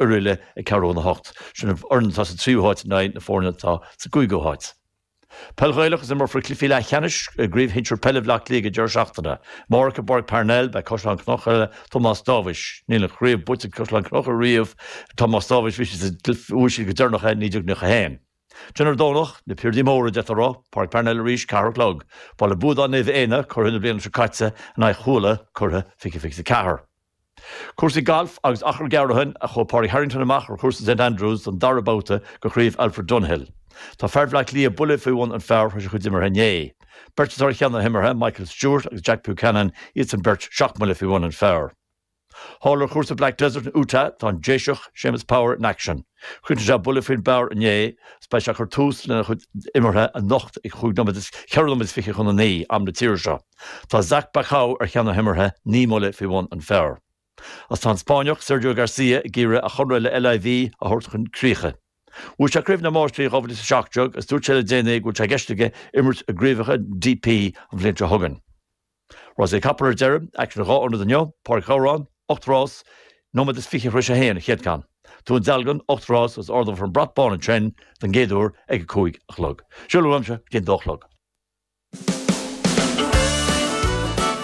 Oirialla ag ceathrú chun a hocht. Sin an fhoireann atá sa tríú háit in aghaidh na foirne atá sa gcúigiú háit. Peil Ghaelach Is imreofar cluichí leathcheannais i gCraobh Shinsir Peile Bhleá Cliath ag an deireadh seachtaine amárach i bPáirc Parnell. Beidh Caisleán Cnucha le Tomás Dáibhis Níl an chraobh buaite ag Caisleán Cnucha riamh. Tomás Dáibhis Bhí siad sa Bhuaigh siad go deireanach é i 1991. Ansin ar an Domhnach, na piardaí móra, deirtear ro, Páirc Parnell arís, ceathair a chlog. Baile Buadáin Naomh Éanna, curaidh na bliana seo caite, in aghaidh Chuala, curaidh fiche fiche is a ceathair. Cúrsaí gailf agus achar gearr ó shin a chuaigh Pádraig Harrington amach ar Chúrsa St Andrews don dara babhta de Chraobh Alfred Dunhill. Tá fear Bhleá Cliath buille faoi bhun an phar tar éis a chuid imeartha inné. Beirt atá ar cheann na himeartha, Michael Stewart agus Jack Buchanan, iadsan beirt seacht mbuille faoi bhun an phar. Thall ar Chúrsa Black Desert in Utah tá an Déiseach, Seamus Power in aicsean. Chríochnaigh sé buille faoin bpar inné agus beidh sé ag cur tús lena chuid imeartha anocht ag chúig nóiméad, ceithre nóiméad is fiche chun a naoi, am na tíre seo. Tá Zach Bauchou ar cheann na himeartha naoi mbuille faoi bhun an phar agus tá an Spáinneach Sergio Garcia ag iarraidh a chonradh le LIV a thabhairt chun críche. Bhuaigh sé Craobh na Máistrí 2017 agus dúirt sé le déanaí go bhfuil sé i gceist aige imirt i gCraobhacha DP an bhliain seo chugainn. Rásaí capall ar deireadh, aicsean in dhá ionad inniu, Páirc Ghabhráin, 8 rás, nóiméad is fiche tar éis a haon an chéad cheann. Dún Dealgan, 8 rás, agus ardófar an brat bán ansin don gcéad uair ag a cúig a chlog. Sin a bhfuil uaimse go dtí an dó a chlog.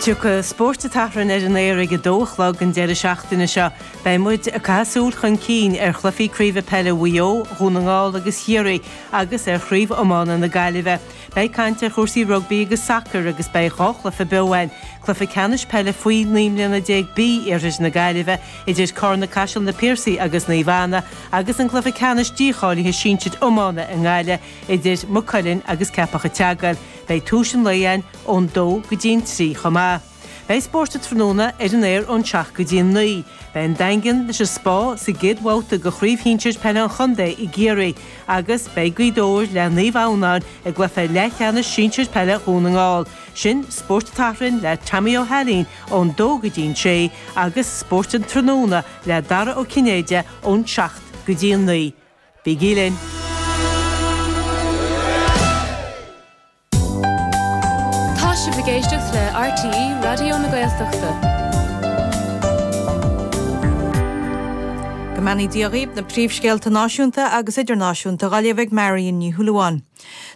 Tiocfaidh Spórt an tSathairn ar an aer ag a dó a chlog an deireadh seachtaine seo. Beidh muid ag caitheamh súil chun cinn ar chluichí craoibhe peile Mhaigh Eo, Dhún na nGall agus Chiarraí agus ar chraobh iomána na Gaillimhe. Beidh caint ar chúrsaí rugbaí agus sacair agus beidh dhá chluiche beo ann, cluiche ceannais peile faoi naoi mbliana déag B iarthair na Gaillimhe idir Carna Caiseal, Na Piarsaigh agus Naomh Anna agus an cluiche ceannais dícháilithe sinsir iomána i nGaillimh. idir Maigh Cuilinn agus Ceapach an tSeagail. Beidh tús an lae ann ón dó go dtí an trí chomh maith. Beidh spórt an tráthnóna ar an aer ón seacht go dtí an naoi. Beidh an Daingean leis an Spá sa gcéad bhabhta de Chraobh Shinsir Peile an Chontae i gCiarraí agus beidh Gaoth Dobhair le Naomh Adhamhnáin i gcluiche leathcheannais sinsir peile Dhún na nGall. Sin Spórt an tSathairn le Tommy Ó hAilín ón dó go dtí an sé agus Spórt an Tráthnóna le Dara Ó Cinnéide ón seacht go dtí an naoi. Bígí linn! Tá sibh ag éisteacht le RTÉ Raidió na Gaeltachta. Go mbeannaí Dia dhaoibh na príomhscéalta náisiúnta agus idirnáisiúnta dha léamh ag Marion Ní Shúilleabháin.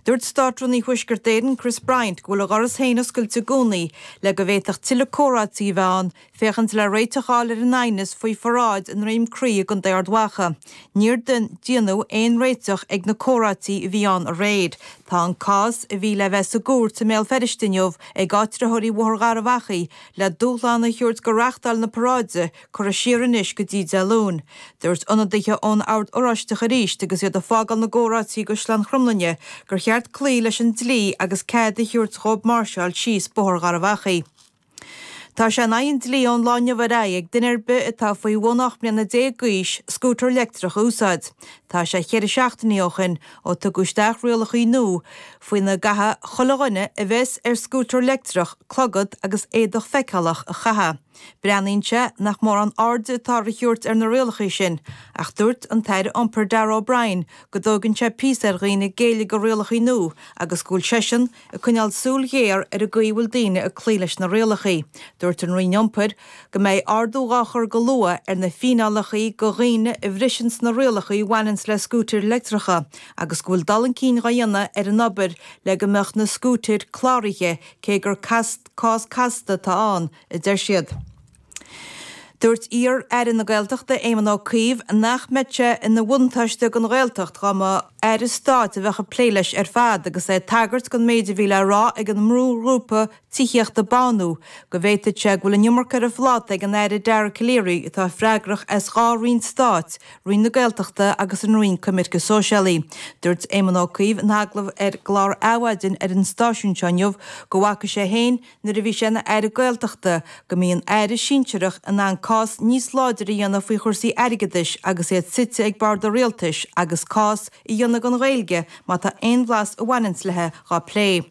Dúirt Státrúnaí Thuaisceart Éireann Chris Bryant go bhfuil a dhoras féin oscailte i gcónaí le go bhféadfadh tuilleadh comhráití a bheith ann féachaint le réiteach a fháil ar an aighneas faoi pharáid i nDroim Crí i gContae Ard Mhacha. Níor déanadh aon réiteach ag na comhráití a bhí ann aréir. Tá an cás, a bhí le bheith sa gcúirt i mBéal Feirste inniu ag áitritheoirí Bhóthar Gharbh Achaidh, le dúshlán a thabhairt go reáchtáil na paráide, curtha siar anois go dtí Dé Luain. Dúirt ionadaithe ón Ord Oráisteach arís agus iad ag fágáil na gcomhráití i gCaisleán Chromlainne gur cheart cloí leis an dlí agus cead a thabhairt dhóibh máirseáil síos Bóthar Gharbh Achaidh. Tá sé in aghaidh an dlí ón lá inniu ar aghaidh ag duine ar bith atá faoi bhun 18 mbliana d'aois scútar leictreach a úsáid. Tá sé ceithre seachtainí ó shin ó tugadh isteach rialacha nua faoina gcaithfidh chuile dhuine a bheas ar scútar leictreach clogad agus éadach feiceálach a chaitheamh. Breathnaíonn sé nach mórán aird atá a thabhairt ar na rialacha sin ach dúirt an tAire Iompair Darragh O'Brien go dtógann sé píosa ar dhaoine géilleadh go rialacha nua agus go bhfuil seisean ag coinneáil súil ghéar ar an gcaoi a bhfuil daoine ag cloí leis na rialacha, dúirt an Roinn Iompair go mbeidh ardú dhá chur go luath ar na fíneálacha go dhaoine a bhriseanns na rialacha a bhaineanns le scútair leictreacha agus go bhfuil dul chun cinn dhá dhéanamh ar an obair le go mbeadh na scútair cláraithe cé gur cás casta atá ann a deir siad. Dúirt iar-aire na Gaeltachta Éamon Ó Cuív nach mbeadh sé ina bhuntáiste don Ghaeltacht dá mba aire stáit a bheadh ag plé leis ar fad agus é ag tagairt don méid a bhí le rá ag an mbrúghrúpa tithíochta Bánú go bhféadfadh sé go bhfuil an iomarca ar a phláta ag an Aire Dara Calleary atá freagrach as dhá roinn stáit, Roinn na Gaeltachta agus an Roinn Coimirce Sóisialaí. Dúirt Éamon Ó Cuív in agallamh ar chlár Adhmhaidin ar an stáisiún seo inniu go bhfaca sé féin, nuair a bhí sé ina Aire Gaeltachta, go mbíonn Aire sinsearach in ann cás níos láidre a dhéanamh faoi chúrsaí airgeadais agus iad suite ag bord an rialtais agus cás a dhéanamh don Ghaeilge má tá aon bhlas a bhaineanns leithe dhá plé.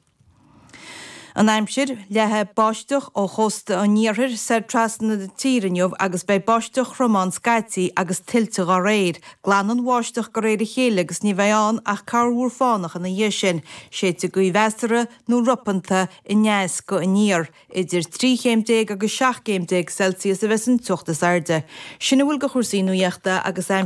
An aimsir, Leathfaidh báisteach ó chósta an iarthair soir trasna na tíre inniu agus beidh báisteach throm ann scaití agus tuilte dhá réir. Glanfaidh an bháisteach go réir a chéile agus ní bheidh ann ach corrmhúr fánach ina dhiaidh sin. Séidfidh gaoth mheasartha nó ropanta aneas go aniar, idir 13 chéim agus 17 gcéim Celsius a bheas an teocht is airde. Sin a bhfuil de chúrsaí nuachta agus.